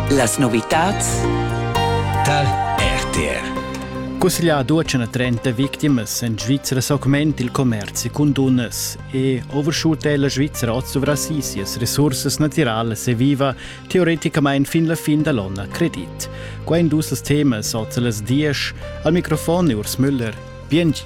Las novitads tar RTR. Cusseglià duecen a 30 victimas en Svizra s'augment il commerzi cun dunnas e overshoot è la Svizra oz sovra si sias resursas natiralas e viva teoreticamain fin la fin da l'onn a credit. Qua in dus temas oz a las 10. Al microfon è Urs Müller. Bientsch!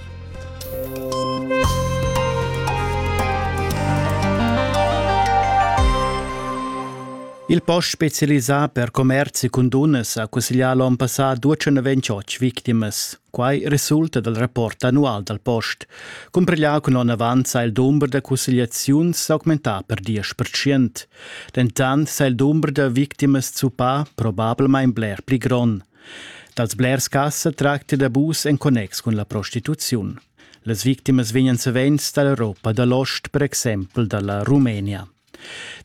Il post specialisà per commerzi cun dunnas ha cusseglià l'onn passà 228 victimas. Quai resulta dal rapport annual dal post. Cumpiglià cun onn avant sa il dumber da cussegliaziuns s'augmentà per 10%. Dentant sa il dumber da victimas zuppà probablamain bler pli grond. Dals blers cas sa tracti d'abus en connex cun la prostituziun. Las victimas vegnan savens da l'Europa da l'ost, per exempel da la Rumenia.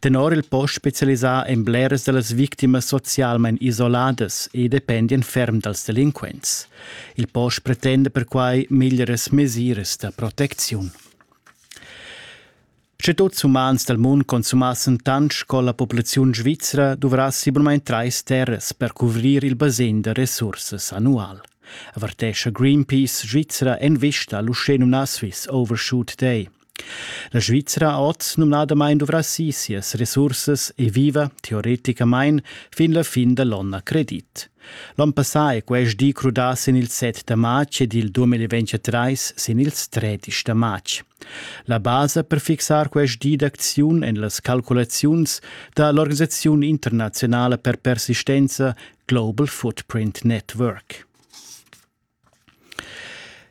Tenor il post specialisà en bleras da las victimas socialmain isoladas e dependian ferm dals delinquents. Il post pretenda perquai meglieras mesiras da protecziun. Sche tuts umans dal mund consumassen tant sco la populaziun svizra duvrassi bunamain trais terras per cuvrir il basegn da resursas annual, avertescha Greenpeace Svizra en vista a l'uschenumnà Swiss Overshoot Day. La Svizra oz numnadamain duvrassi sias resursas e viva, teoreticamain, fin la fin da l'onn a credit. L'onn passà è quest di crudà sin il 7 da matg ed il 2023 sin ils 13 da matg. La basa per fixar quest di d'acziun en las calculaziuns da l'organisaziun internaziunala per persistenza Global Footprint Network.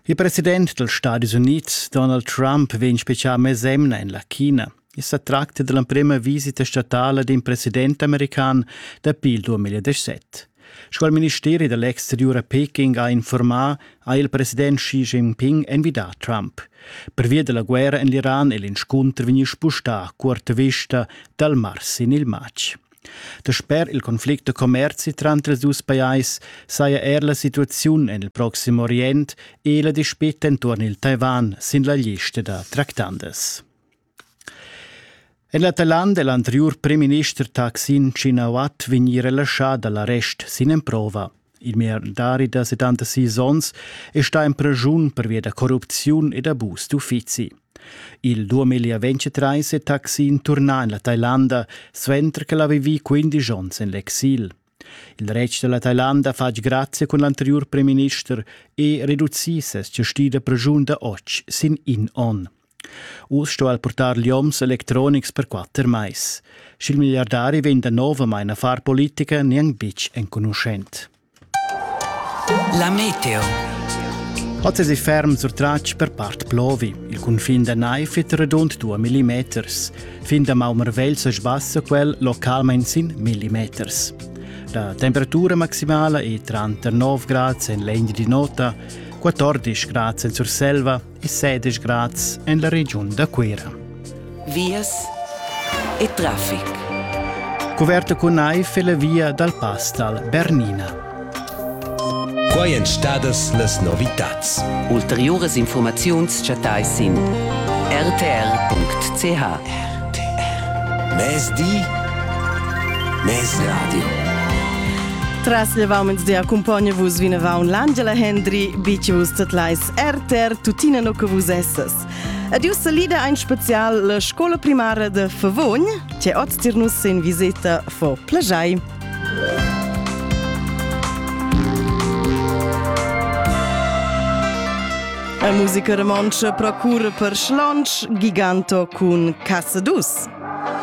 Il president dals Stadis Unids Donald Trump vegn spezial mesemna en la China. I sa tracta dell'emprema visita statala d'un president american dapi il 2017. Sco il ministeri dell'exterior a Peking ha informà, ha il president Xi Jinping envidà Trump. Pervia della guerra en l'Iran e l'inscunter vegni spustà a cuorta vista dal mars in il matg. Dasper il conflict da commerzi tranter ils dus pajais saja er la situaziun en il proxim Orient e la dispeta intorno il Taiwan sin la lista da tractandas. En l'Atalanta è l'anteriur primminister Taksin Shinawat vegnì relaschà da l'arrest sin emprova. Il milliardari da 76 onns è stà en preschun pervia da corrupziun ed abus d'uffizi. Il 2023 è Taksin turnà en la Thailanda, suenter ch'el ha vivì 15 onns en l'exil. Il retg dalla Thailanda ha fatg grazia cun l'anteriur premierminister e reducì ses gestì da preschun da otg sin in onn. Uss sto el purtar lioms electronics per quatter mais. Sch'il milliardari vegn danovamain a far politica, neanc bitg enconuschent. La meteo. Oz è ferm surtratg per part plovi. Il cunfin da naiv è redund 2 mm. Fin damaun marvegl sa sbassa quel localmain sin millimeters. La temperatura maximala è tranter 9 grads en l'Engi di Nota, 14 grads en Surselva e 16 grads en la regiun da Cuira. Vias e traffic. Coperta cun naiv è la via dal pass dal Bernina. Quai èn stadas las novitads. Ulteriuras infurmaziuns chattais sin rtr.ch. RTR. Mezdi, mezradio. Tras levaumens de accompagna vus vinavant l'Angela Hendry, bici vus tatlais RTR tuttina no che vus essas. Adieu salida ein spezial la scola primara de Favogn, che oz tirnus in visita fo plagiai. La musica romontscha procura per schlantsch Giganto cun Casa Dus.